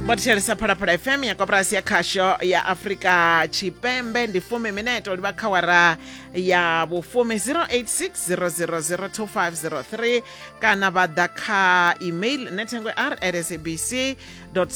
vho thetshelesa phalaphala fm ya koporasi ya khasho ya afurika tshipembe ndi fumi mineto livha kha wara ya vhufumi 0860002503 kana vha ḓa kha email nethengo r at sabc co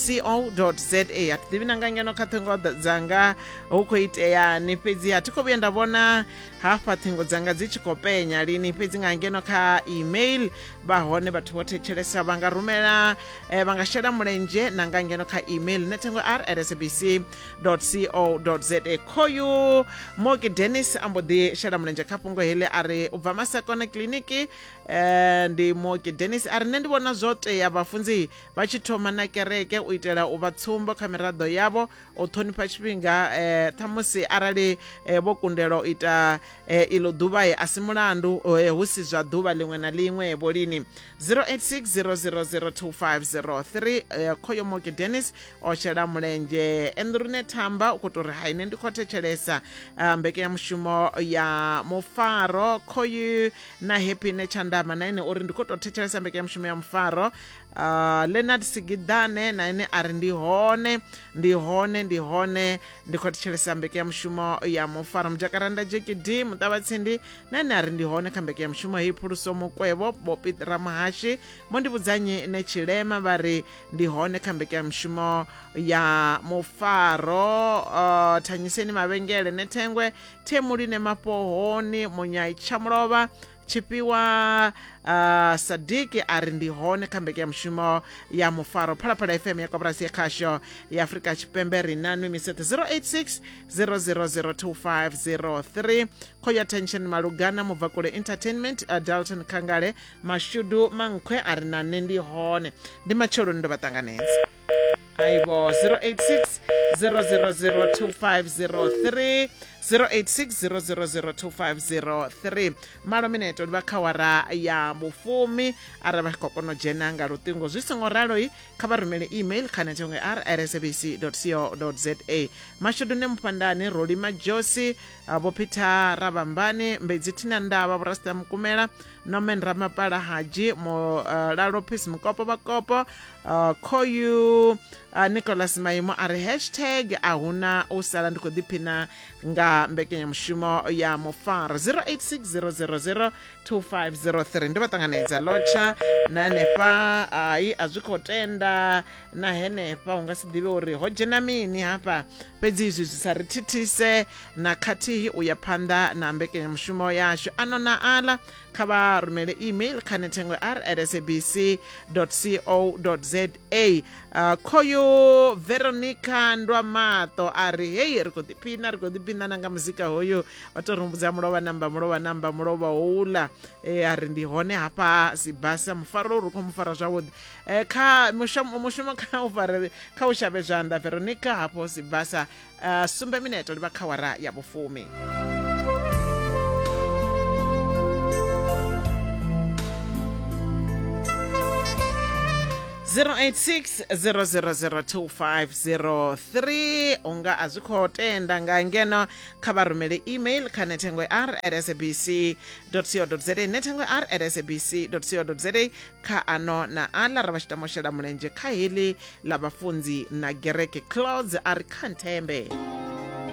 za a thi ḓivhi na nga ngeno kha ṱhingo dza- dzanga hu khou iteani fhedzi a thi khou vhuya nda vhona hafha ṱhingo dzanga dzi tshi khou penya lini fhedzi nga ngeno kha email vha hone vhathu vho thetshelesa vha nga rumela eh, vha nga shela mulenzhe na nga ngeno kha email nethengo r rsbc co za khoyu moki denis a mbo ḓi shela mulenzhe kha fhungo heḽi a ri u bva masakona kiliniki eh, ndi moki denis a ri nṋe ndi vhona zwo tea vhafunzi vha tshi thoma na kereke u itela u vha tsumbo kha miraḓo yavho u ṱhonifha tshifhinga eh, ṱhamusi arali eh, vho kundelwa u ita eh, iḽo ḓuvha eh, a si mulandu eh, hu si zwa ḓuvha ḽiṅwe na ḽiṅwe eh, vho lini 0860002503 eh, khoyo moke dennis o shela mulenzhe endrune thamba u khou tou ri ha ine ndi khou thetshelesa eh, mbekanyamushumo ya mufaro khoyu na happy ne tshandama na ine uri ndi khou tou thetshelesa mbekanyamushumo ya mufaro Uh, leonard sigidane na ene a ri ndi hone ndi hone ndi hone ndi khou thetshelesa mbekanyamushumo ya mufaro mujakaranda jkd muṱavhatsindi na ene a ri ndi hone kha mbekanyamushumo heyi phuluso mukwevho bopit ramuhashi mo ndi vhudzanyi ne tshilema vha ri ndi hone kha mbekanyamushumo ya mufaro uh, thanyiseni mavhengele ne thengwe themuli ne mafhohoni munyai tshamulovha tshifhiwa uh, sadiki a ri ndi hone kha mbekanyamushumo ya mufaro phalaphala fm ya koporasi ya khasho ya afurika tshipembe ri na nwi misete 086 0002503 khoya tension malugana mubvakule entertainment uh, dalton khangale mashudu mankhwe a ri na nṋe ndi hone ndi matsheloni ndo vha ṱanganedza aibo 086 0002503 086 0002503 malo mineto ndi vha kha wara ya vhufumi arali vha tshi khou kona u dzhena nga luṱingo zwi songo raloi kha vha rumele email kha netshongo ya rsabc co za mashudune mufhandani roli majosi ah, vho peter ravhambani mbedzi thina ndavha vhorasita mukumela norman ramapala haji mulalo peace mukopo vhakopo Uh, khoyu uh, nicholas maimo a ri hashtag a huna u sala ndi khou ḓiphina nga mbekanyamushumo ya mufaro 086000 2503 ndi vha ṱanganedza lotsha na henefha hai a zwi khou tenda na henefha u nga si ḓivhe uri ho dzhena mini hafha fhedzi izwi zwi sa ri thithise na khathihi u ya phanḓa na mbekanyamushumo yashu ano na ala kha vha rumele email kha nethengo r at sabc co za uh, khoyu veronica ndwamato a ri hei ri khou ḓiphina ri khou ḓiphina na nga muzika hoyu vha tou rumbudza mulovha namba mulovha namba mulovha houḽa e a ri ndi hone hafha sibasa mufaro uri u khou mu fara zwavhuḓi um kha mushumo kha u fare kha u shavhe zwanḓa veronica hafho sibasa uh, sumbe mineto livha kha wara ya vhufumi zero eight six zero zero zero two five zero three unga a zwi khou tenda nga ngeno kha vha rumele email kha nethengo r at sabc co za nethengo r at sabc co za kha ano na aḽa ra vha tshi tama u shela mulenzhe kha heḽi ḽa vhafunzi na gereke clouds a ri kha nthembe